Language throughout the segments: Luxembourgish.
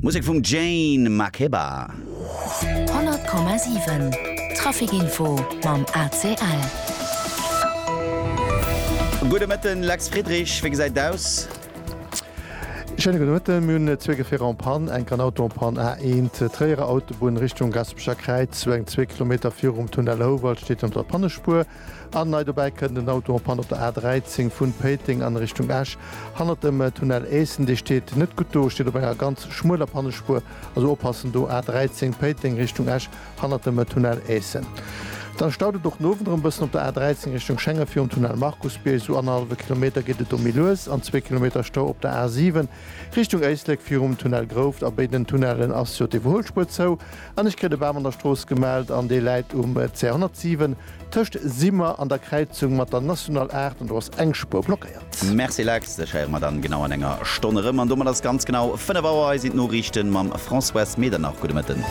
Musek vum Jane Makeba. 100,7 Trafic Info mam ACL. Gudde Mëtten, Lex Friedrich, wéi gesäit et aus? Schéine gudde Mëtten, mir hunn zwee Gefierer en Panne, enk en Auto en Panne, A 1, Tréierer Autobunn, Richtung Gaspecher Kräiz, sou eng zwee Kilometer virum Tunnel Houwald steet ënnert der Pannespuer. An nei dobäi kënnt en Auto en Panne op der A13 vun Péiteng an Richtung Esch hannert dem Tunnel Éissen. Dee steet net gutt do, steet op enger ganz schmueler Pannespuer, also oppassen do, A13 Péiteng Richtung Esch hannert dem Tunnel Éissen. Dann staut et och den Owend erëm bëssen op der A13 Richtung Schengen virum Tunnel Markusbierg, sou annerhallwe Kilometer geet et do méi lues an zwee Kilometer Stau op der A7. Richtung Éislek virum Tunnel Grouft. A béiden Tunnellen ass jo d'Iwwerhuelspuer zou an ech kritt e Bam an der Strooss gemellt an dee läit um C 107 tëscht Simmer an der Kräizung mat der National 8 an do ass eng Spuer blockéiert. Merci Lex, dech héiere mer dann genau an enger Stonn erëm an domat ass ganz genau 5 Auer. Hei sinn d'Noriichten mam Françoise Medernach. Gudde Mëtten.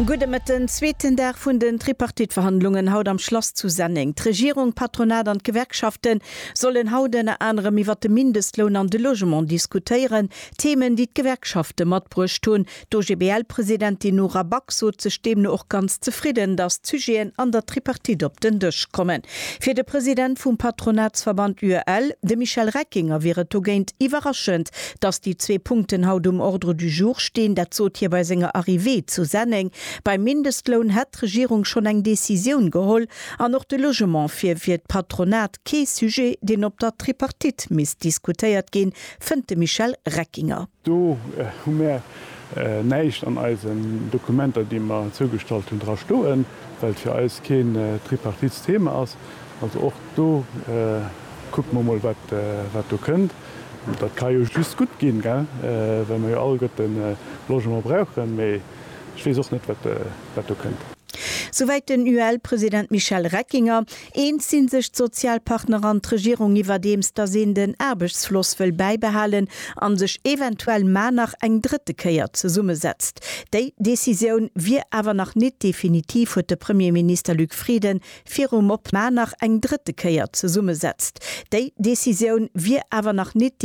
Gudde Mëtten. Zweeten Dag vun den Tripartite-Verhandlungen haut am Schlass zu Senneng. D'Regierung, d'Patronat an d'Gewerkschaften sollen haut ënner anerem iwwer de Mindestloun an de Logement diskutéieren, Themen, déi d'Gewerkschafte matbruecht hunn. D'OGBL-Presidentin Nora Back sot sech deemno och ganz zefridden, datt d'Sujeten an der Tripartite op den Dësch kommen. Fir de President vum Patronatsverband UEL, de Michel Reckinger, wier et dogéint iwwerraschend, datt déi zwee Punkten haut um Ordre du jour stinn. Dat sot hie bei senger Arrivée zu Senneng. Beim Mindestloun hätt d'Regierung schonn eng Decisioun geholl, An och de Logement fir fir d'Patronat kee Sujet, deen op der Tripartite misst diskutéiert ginn, fënnt de Michel Reckinger. Do hu mär näischt an eisen Dokumenter, déi mer zougestallt hunn, dra stoen, well et fir eis keen Tripartitsthema ass. Also och do kucke mer mol, wat do kënnt. Dat ka jo just gutt ginn, well mer jo alleguerten Logement brauchen. Ech weess och net, wat do kënnt. Souwäit den UEL-President Michel Reckinger. Eens si sech d'Sozialpartner an d'Regierung iwwerdeems, datt een den Aarbechtsfloss wëll bäibehalen a sech eventuell mar nach eng drëtte Kéier zesummesetzt. Déi Decisioun wier awer nach nit definitiv, huet de Premierminister Luc Frieden virum op mar nach eng drëtte Kéier zesummesetzt. Déi Decisioun wier awer nach nit.